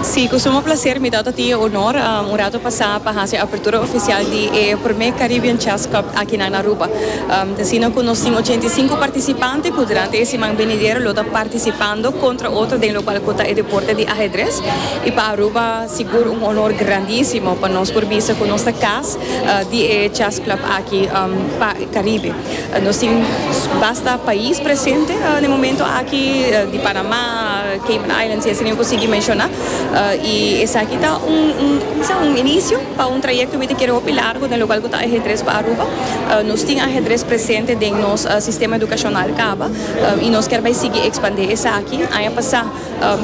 Si, cu suma placer mi ta tabata tin e honor un rato pasa pa haci e apertura oficial di e primer Caribbean Chess Cup aki na Aruba. Ta asina cu nos tin ochenta i sinku participante cu durante e siman benidero lo ta participando contra otro den locual cu ta e deporte di Ahedres. Y pa Aruba sigur un honor grandisimo pa nos por bisa cu nos ta cas di e Chess Club aki pa Caribe. Nos tin basta pais presente na e momento aki, di Panama, Cayman Islands y asina yo cu sigui menciona. Y esaki ta un, un, como se dice, un inicio pa un trayecto mi ta kere hopi largo den locual cu ta ajedrez pa Aruba. Nos tin ajedrez presente den nos sistema educacional caba y nos ker bay sigui expande esaki. Aña pasa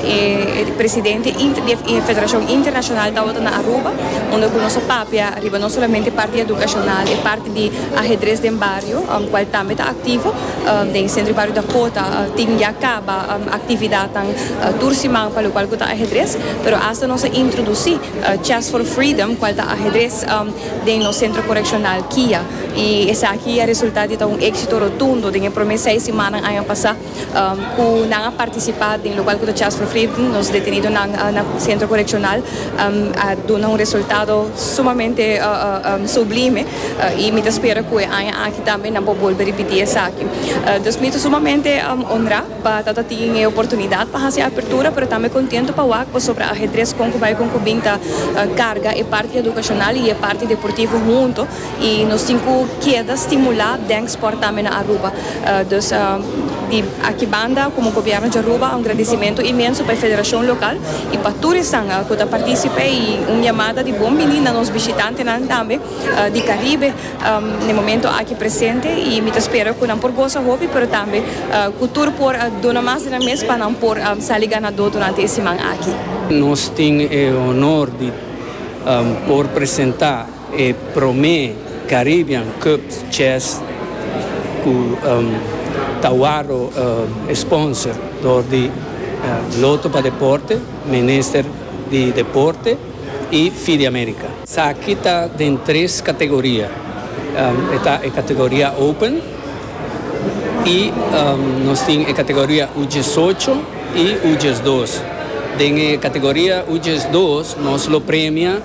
E presidente di e federashon internashonal tabata na Aruba unda ku nos a papia riba no solamente parti edukashonal e parti di ahedres den bario kual tambe ta aktivo den sentro di bario Dakota tin ya kaba aktividatnan tur siman pa lokual ku ta ahedres pero asta nos a introdusí Chess for Freedom kual ta ahedres den nos sentro korekshonal kia i esaki a resultá di ta un éksito rotundo den e promé seis simannan aña pasá. cu nan a participa den lugar cu ta tjia sufri, nos detenidonan na centro coreccional a duna un resultado sumamente sublime y mi ta spera cu e aña aki tambe nan por bolbe ripiti esaki. Dus mi ta sumamente honra pa ta ta tin e oportunidad pa haci e apertura pero tambe contento pa wak pasobra e ajedrez con cu bay con cu bin ta carga e parti educacional y e parti deportivo hunto. Y nos tin cu keda stimula den sport tambe na Aruba. Dus di aki banda como Gobierno di Aruba un gradicimento inmenso pa e federacion local y pa tur esnan cu ta participe y un yamada di bon bini na nos bishitantenan tambe di Caribe n'e momento aki presente y mi ta spera cu nan por goza hopi pero tambe cu tur por duna mas di nan mes pa nan por sali ganador durante e siman aki. Nos tin e honor di por presenta E promé Caribbean Cup Chess ku ta wòrdu sponsor dor di Loto pa Deporte, Minister di Deporte i Fideamerica. Esaki ta den tres kategoria. E ta e kategoria Open. y nos tin e categoria U diesocho y U diesdos. Den e categoria U diesdos nos lo premia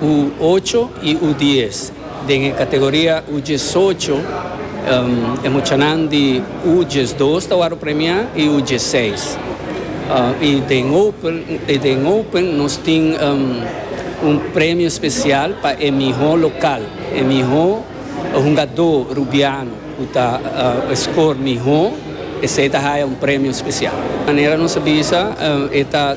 U ocho y U dies. Den e categoria U diesocho e muchanan di U diesdos ta wòrdu premiá y U diesseis. Y den open y den open nos tin un premio special pa e mihó local, e mihó. E hungadó Rubiano ku ta skor mihó esei ta haya un premio spesial. Manera nos a bisa e ta.